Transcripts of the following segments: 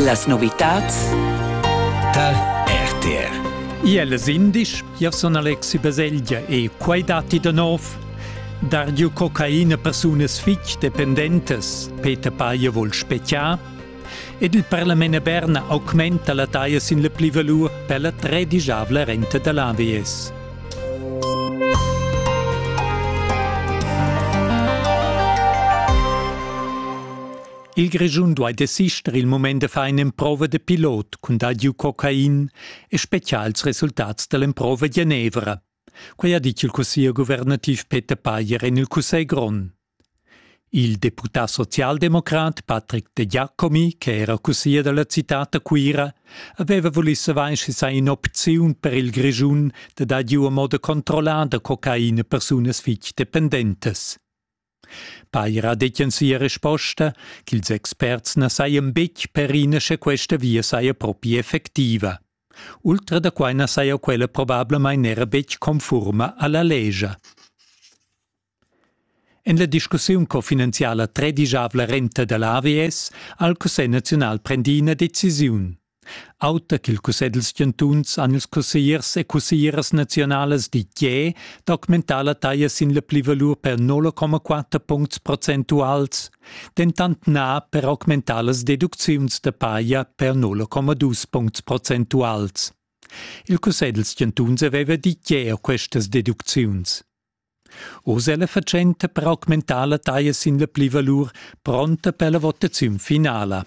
Las novitads tar RTR. Iel sindisch, io sun Alexi Baselgia e quai datti da nov. Dar giu cocaina persunas fitg dependentes, Peter Paia vul speziar. Ed il Parlament Berna augmenta la taia sin le plivalur per la tredigiavla renta da l'AVS. Il Grischun duai desister il mument da far in'emprova da pilot cun dar giu cocain e spezial ils resultats da l'emprova Genevra. Quai ha ditg il cussier guvernativ Peter Payer en il Cussegl grond. Il deputà socialdemocrat Patrick De Giacomi, che era cussier da la citad da Cuira, aveva vulì savair sch'i saja in'opziun per il Grischun da dar giu a moda controllada cocaina a persunas fitg dependentas. Paira detien sia resposta ch'ils experts na sajan betg perina sche questa via saja propi effectiva. Ultra da quai na saja quella probablamain era betg confurma a la legia. En la discussiun cofinanziala tredigiavla renta da l'AVS ha il Cussegl naziunal prendì ina decisiun. Auter ch'il cussegl dals chantuns han ils cussegliers e cusseglieras naziunalas ditg tge d'augmentar la taglia sin la plivalur per 0,4 puncts procentuals, dentant na per augmentar las deducziuns da paja per 0,2 puncts procentuals. Il cussegl dals chantuns aveva ditg tge a questas deducziuns. Oz è la fatschenta per augmentar la taglia sin la plivalur pronta per la votaziun finala.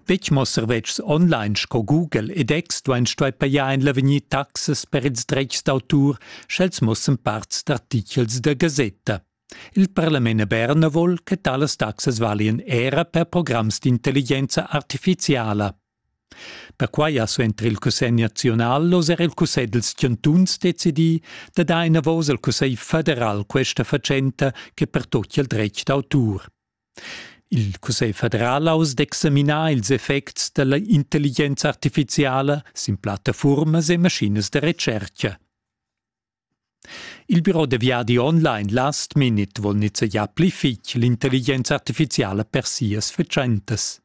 Betg mo servetschs online sco Google ed X duain stuair pajar en l'avegnir taxas per ils dretgs d'autur, sch'els mussan parts d'artitgels da gasetta. Il parlament a Berna vul che talas taxas valian era per programs d'intelligenza artifiziala. Perquai ha suenter il Cussegl nazional oz er il Cussegl dals chantuns decidì da dar enavos al Cussegl federal questa fatschenta che pertochia il dretg d'autur. Il cussegl federal ha uss d'examinar ils effects da la intelligenza artifiziala sin plattafurmas e maschinas da retschertga. Il biro da viadi online Last Minute vul nizzegiar pli fitg l'intelligenza artifiziala per sias fatschentas.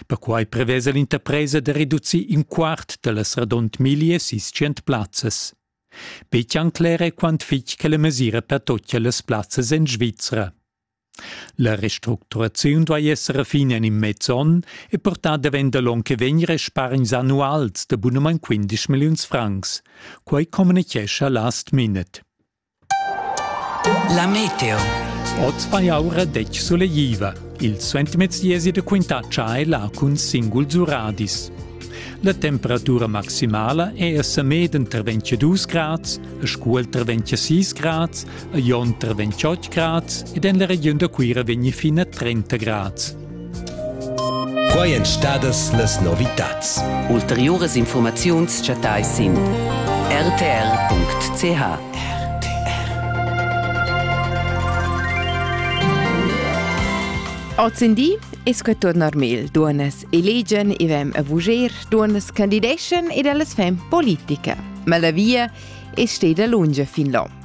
Perquai prevesa l'interpresa da reducir in quart da las radund miglia sis tschient plazzas. Betg cler è quant fitg che la mesira per tuttas las plazzas en Svizra. La restructuraziun duai esser a fin en in mez onn e portar davent da l'onn che vegn respargns annuals da bunamain 15 milliuns francs. Quai communitgescha Last Minute. La meteo. Oz fa aura detg solegliva. Il suentermezdiesi da quintatscha è là cun singuls uradis. La temperatura maximala è a Samed entre 22 grads, a Scuol entre 26 grads, a Jonter 28 grads ed en la regiun da Cuira vegni fin a 30 grads. Quai èn stadas las novitads. Ulteriuras informaziuns chattai sin rtr.ch. Ozendi es que turnar mel duonas elegian e vem a vuger duonas candideschan ed ellas fem politica. Ma la via es steda lunga fin là.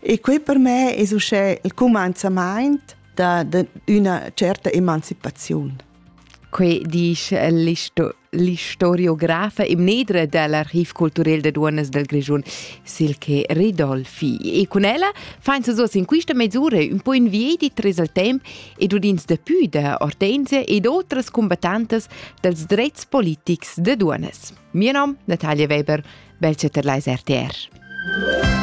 E quei per me es uschè il cumanzamaint da, da üna certa emancipaziun. Quei disch l'istoriografa e mnedra dell'Archiv Culturel de Duonas del Grischun, Silke Ridolfi. E con ella fain sa in quista mesura un po inviedit res al temp ed udins de pü da Ortensia ed otras combattantas dels drets politics de Duonas. Mio nom Natalia Weber, Belce Terleis RTR.